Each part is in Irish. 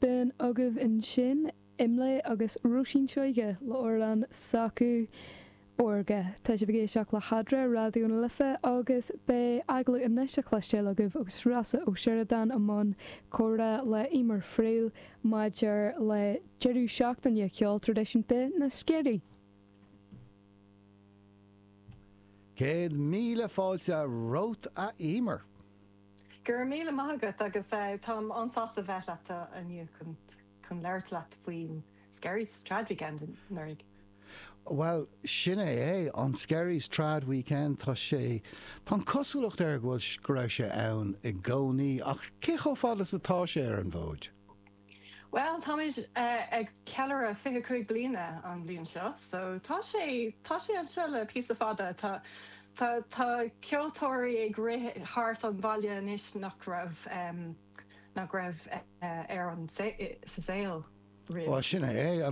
B'in agaibh ansin IMLÉ agus Róisín Seoighe le amhrán s'acu Órga. Tá sibh ag éisteacht le hEadra, Raidió na Life, agus beidh agallamh anois a chloisteáil agaibh agus Rossa Ó Sioradáin i mbun comhrá le Emer Friel maidir le deireadh seachtaine ceol traidisiúnta na Sceirí. Céad míle fáilte romhat a Emer. Go raibh míle maith agat agus táim an-sásta a bheith leat inniu chun labhairt leat faoin Skerries Trad Weekend anuraidh. Bhuel, sin é é, an Skerries Trad Weekend, tá sé, tá an cosúlacht air go bhfuil, go raibh sé ann i gcónaí ach cé chomh fada is atá sé ar an bhfód? Bhuel, táimid ag ceiliúradh fiche cúig bliana an bhliain seo so tá sé, tá sé anseo le píosa fada. Tá, tá, tá ceoltóirí ag rith thart an bhaile anois nach raibh, nach raibh ar an, sa saol Bhuel, roimh, sin é é,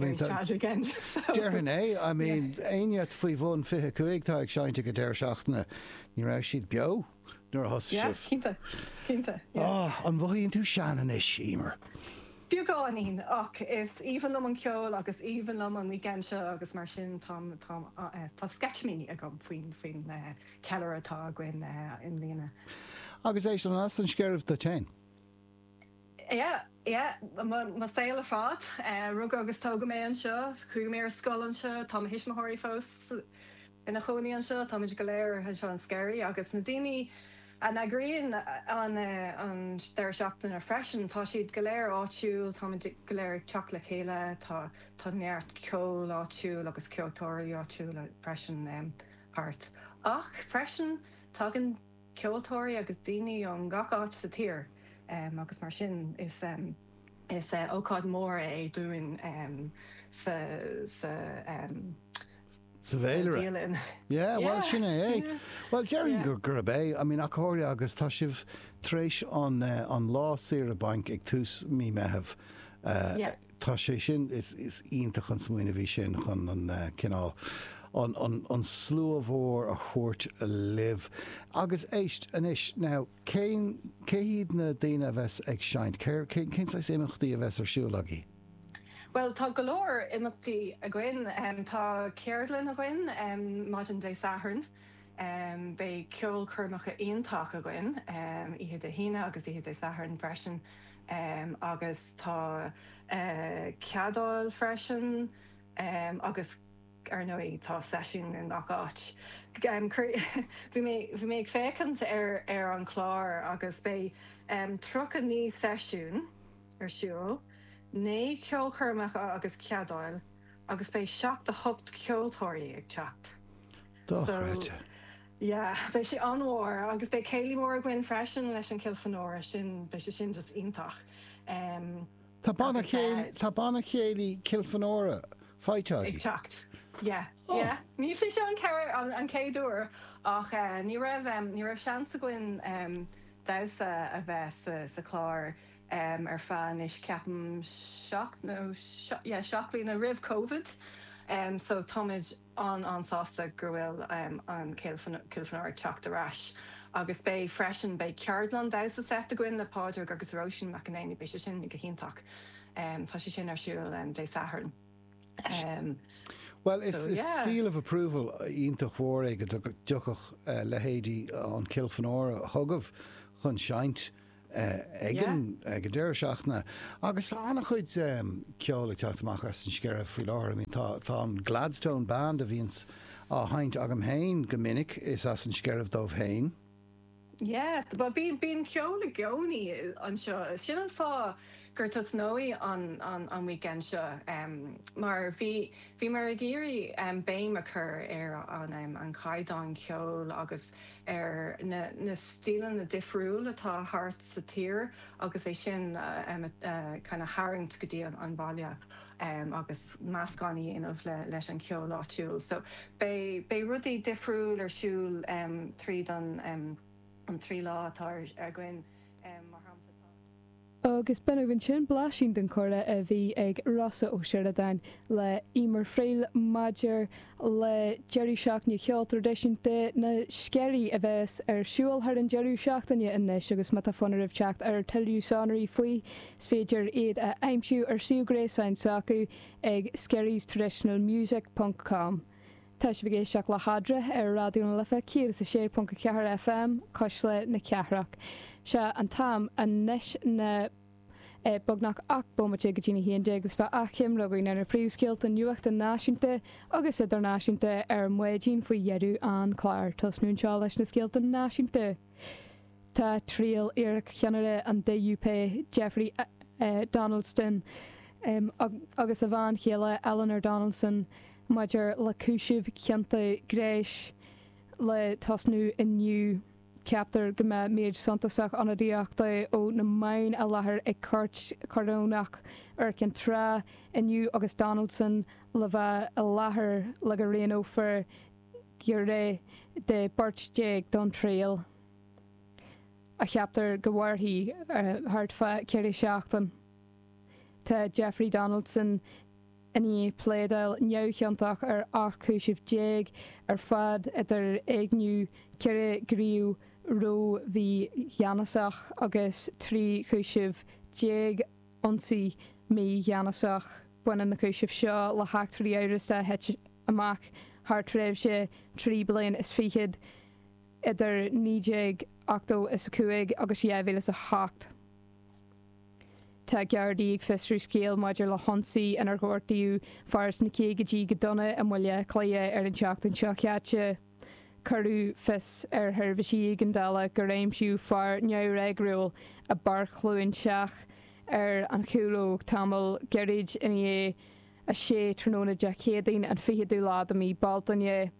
déarfainn é, I mean éinne faoi bhun fiche cúig atá ag seinnt ag an deireadh seachtaine, ní raibh siad beo. nuair a thosaigh sibh. Yeah, cinnte, cinnte, yeah. Ah, an mhothaíonn tú sean anois, Emer? Beagáinín, ach is aoibhinn liom an ceol agus aoibhinn liom an weekend seo agus mar sin táim, táim, eh, tá sceitimíní agam faoin, faoin, eh, ceiliúradh atá againn, eh, i mbliana. Agus éist, an as na Sceirí duit féin? Yeah, yeah, mo, mo shaol ar fad. Eh, rugadh agus tógadh mé anseo, chuaigh mé ar scoil anseo, tá mo thuismitheoirí fós, ina chónaí anseo, táimid go léir anseo in Skerries agus na daoine a n-eagraíonn an deireadh seachtaine freisin, tá siad go léir áitiúil, táimid go léir ag teacht le chéile, tá neart ceol áitiúil agus ceoltóirí áitiúla freisin thart. Ach freisin tagann ceoltóirí agus daoine ó ngach áit sa tír agus mar sin is ócáid mhór é dúinn sa sa bhféilire. Yeah, bhuel sin é é. Bhuel déarfainn gur gurb é, I mean, achomhairc agus tá sibh tar éis an lá saoire bainc ag tús mí Meitheamh, tá sé sin, is iontach an smaoineamh í sin chun an cineál, an slua mhór a thabhairt libh. Agus éist anois, now, cén, cé hiad na daoine a bheas ag seinnt, cén saghas imeachtaí a bheas ar siúl agaí? Bhuel, tá go leor imeachtaí againn. Tá ceardlann againn maidin Dé Sathairn. Beidh ceolchoirmeacha iontach againn oíche Dé hAoine agus oíche Dé Sathairn freisin. Agus tá ceadal freisin agus ar ndóigh tá seisiún i ngach áit. Bhí mé ag féachaint ar an chlár agus beidh tríocha naoi seisiún. ar siúl, naoi ceolchoirmeacha agus ceadail agus beidh seacht a hocht ceoltóirí ag teacht. So, Dochreidte. yeah, beidh sé an-mhór agus beidh céilí mór againn freisin leis an Kilfenora, sin, beidh sé sin just iontach. Em, Tá banna chéil, eh, tá banna chéilí Kilfenora faighte ag againn. teacht. Yeah, Oh. yeah. Ní sé seo an chéad, an, an chéad uair ach eh, ní raibh em, ní raibh seans againn em damhsa a bheith sa, sa chlár. ar feadh anois ceapaim seacht nó yeah seacht mbliana roimh Covid so táimid an-an-sásta go bhfuil an Kilfenora ag teacht ar ais agus beidh freisin beidh ceardlann damhsa seit againn le Pádraig agus Róisín McEneany beidh sé sin go hiontach tá sé sin ar siúl Dé Sathairn. Bhuel is seal of approval iontach mhór é go dtiocfadh leithéidí an Kilfenora chugaibh chun seinnt ag an deireadh seachtaine agus tá an-chuid ceoil ag teacht amach as na Sceiribh faoi láthair. I mean tá tá an Gladstone Band a bhíonns á sheinnt agam fhéin go minic is as na Sceiribh dóibh fhéin. Yeah bhuel bíonn bíonn ceol i gcónaí anseo sin an fáth gur tosnaíodh an an an weekend seo em mar bhí bhíomar ag iarraidh em béim a chur ar an em an chaighdeán ceoil agus ar na stíleanna difriúil atá thart sa tír agus é sin a tharraingt go dtí an baile agus meascán a dhéanamh leis an cheol áitiúil. So beidh rudaí difriúil ar siúl tríd an trí lá atá againn. Mar shampla, tá. Agus b'in ansin blaisín den chomhrá a bhí ag Rossa Ó Sioradáin le Emer Friel maidir le deireadh seachtaine cheoil traidisiúnta na Sceirí a bheas ar siúl thar an deireadh seachtaine anois agus má tá fonn oraibh teacht ar tuilleadh sonraí faoi, is féidir iad a aimsiú ar suíomh gréasáin s'acu ag skerries traditional music ponc com. Tá sibh ag éisteacht le hEadra ar Raidió na Life 106.4 FM, Cuisle na Cathrach. Sé an t-am anois ná beagnach 8 bomaite go dtí na haon déag agus beidh achoimre againn ar na príomhscéalta nuachta náisiúnta agus idirnáisiúnta ar maidin faoi dheireadh an clár. Tosnú anseo leis na scéalta náisiúnta. Tá triail iarcheannaire an DUP, Jeffrey Donaldson, agus a bhean chéile Eleanor Donaldson maidir le cúisimh cionta gnéis le tosnú inniu. Ceaptar go mbeidh méid suntasach ionadaíochta ó na meáin i láthair ag Cúirt Chorónach Iúr Cinn Trá inniu agus Donaldson le bheith i láthair le go roghnófar giúiré de bheirt déag don triail a cheaptar go mairfidh thart fá ceithre seachtaine. Tá Jeffrey Donaldson i ndiaidh pléadáil neamhchiontach ar ocht chúiseamh déag ar fad idir éigniú, ceithre ghníomh ró-mhígheanasach agus trí chúiseamh déag ionsaí mígheanasach. Baineann na cúisimh seo le heachtraí amhrasacha. amach thar thréimhse trí bliain is fichead idir 1985 agus 2008. Tá Gardaí ag fiosrú scéal maidir le hionsaí inar gortaíodh fear sna caogaidí go dona i mBaile Átha Cliath ar an tseachtain seo chaite. Cuireadh fios ar sheirbhísí éigeandála gur aimsíodh fear neamhfhreagrúil i bPáirc Chluain Seach ar an Chúlóig tamall gairid ina dhiaidh 6 tráthnóna Dé Céadaoin, an 20ú lá de mhí Bealtaine.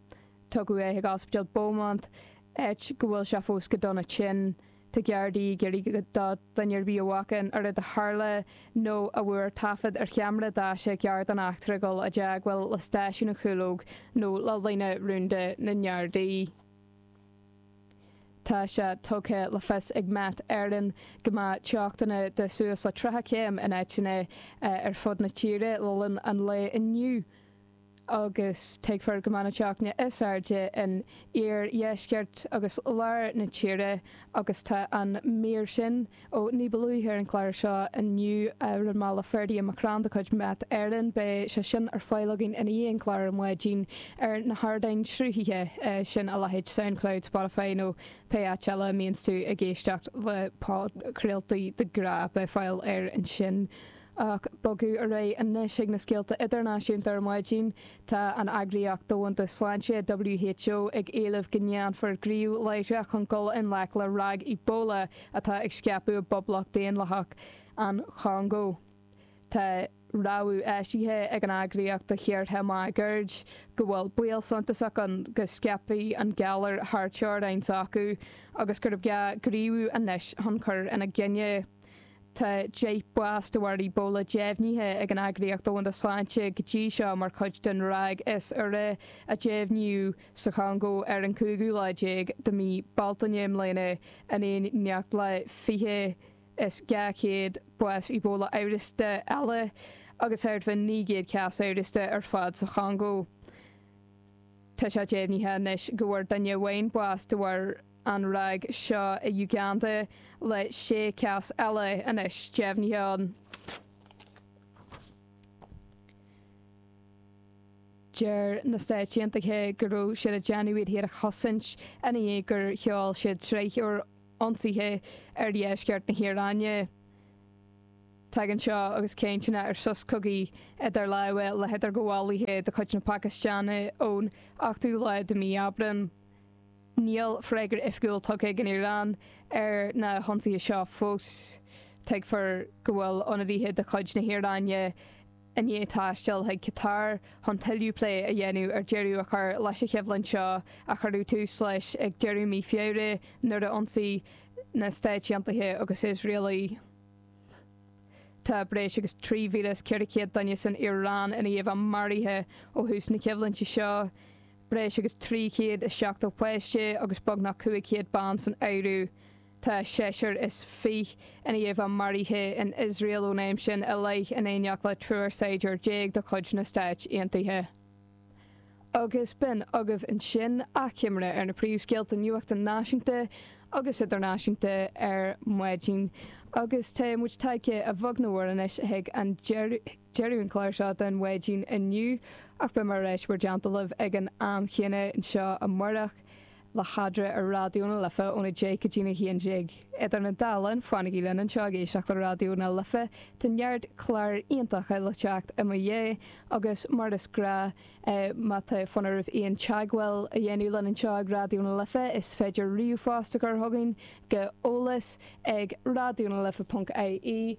Tugadh é chuig Ospidéal Beaumont, áit go bhfuil sé fós go dona tinn. Tá Gardaí ag iarraidh ar dhuine ar bith a bhfaca an rud a tharla nó a bhfuair taifead ar cheamara daise cairr den eachtra dul i dteagmháil le stáisiún na Cúlóige nó le líne rúnda na nGardaí. Tá sé tugtha le fios ag Met Éireann go mbeidh teochtanna de shuas le 30 céim in áiteanna ar fud na tíre le linn an lae inniu agus tuigfear go mbeidh na teochtanna is airde in iardheisceart agus lár na tíre agus tá an mhír sin Ó, ní ba luaithe ar an gclár seo inniu a rinne muid le Ferdia McCrann de chuid Met Éireann. Beidh sé sin ar fáil againn i ndiaidh an chláir ar maidin ar na hardáin sruthaithe sin a leithéid Soundcloud, Spotify nó pé áit eile a mbíonns tú ag éisteacht le podchraoltaí de ghnáth. Beidh fáil air ansin. Ach ag bogadh ar aghaidh anois chuig na scéalta idirnáisiúnta ar maidin. Tá an Eagraíocht Dhomhanda Sláinte, WHO, ag éileamh go ndéanfar gníomh láithreach chun dul i ngleic le ráig Ebola atá ag scaipeadh i bPoblacht Daonlathach an Chongó. Tá rabhadh eisithe ag an eagraíocht do thíortha máguaird go bhfuil baol suntasach ann go scaipfidh an galar thar teorainn s'acu agus gur gá gníomhú anois chun cur ina choinne. Tá deich mbás de bharr Ebola deimhnithe ag an Eagraíocht Dhomhanda Sláinte go dtí seo mar chuid den ráig is úire a deimhníodh sa Chongó ar an gcúigiú lá déag de mhí Bealtaine i mbliana, in éineacht le fiche is dhá chéad bás Ebola amhrasta eile agus thart fá naoi gcéad cás amhrasta ar fad sa Chongó. Tá sé deimhnithe anois go bhfuair duine amháin bás de bharr. an ráig seo i Uganda le sé chás eile anois deimhnithe ann. Deir na Stáit Aontaithe go raibh siad ag déanamh iad féin a chosaint i ndiaidh gur sheol siad sraith úr ionsaithe ar dheisceart na hIaráine. Tagann seo agus cainteanna ar sos cogaidh idir lámha le hidirghabhálaithe de chuid na Pacastáine ón ochtú lá de mhí Aibreáin. Níl freagra oifigiúil tugtha ag an Iaráin ar na hionsaithe seo fós. Tuigtear go bhfuil ionadaithe de chuid na hIaráine i ndiaidh taisteal chuig Catar chun tuilleadh plé a dhéanamh ar deireadh a chur leis an choimhlint seo a cuireadh tús leis ag deireadh mhí Feabhra nuair a ionsaigh na Stáit Aontaithe agus Iosrael í. Tá breis agus 3,400 duine san Iaráin i ndiaidh a bheith maraithe ó thús na coimhlinte seo. breis agus 370 páiste agus beagnach 500 bean san áireamh. Tá seisear is fiche i ndiaidh a bheith maraithe in Iosrael ón am sin i leith in éineacht le triúr saighdiúir déag de chuid na Stáit Aontaithe. Agus b'in agaibh ansin achoimre ar na príomhscéalta nuachta náisiúnta agus idirnáisiúnta ar maidin agus tá muid tagtha a bheag nó a mhór anois chuig an deireadh. Deireadh an clár seo don mhaidin inniu, ach beidh mé ar ais in bhur dteannta libh ag an am chéanna anseo amárach, le hEadra ar Raidió na Life óna deich go dtína haon déag. Idir an dá linn, fanaigí linn anseo ag éisteacht le Raidió na Life, tá neart cláir iontacha le teacht i mo dhiaidh, agus mar is gnách, má tá fonn oraibh aon teagmháil a dhéanamh linn anseo ag Raidió na Life, is féidir ríomhphost a chur chugainn go eolas ag raidiónalife.ie.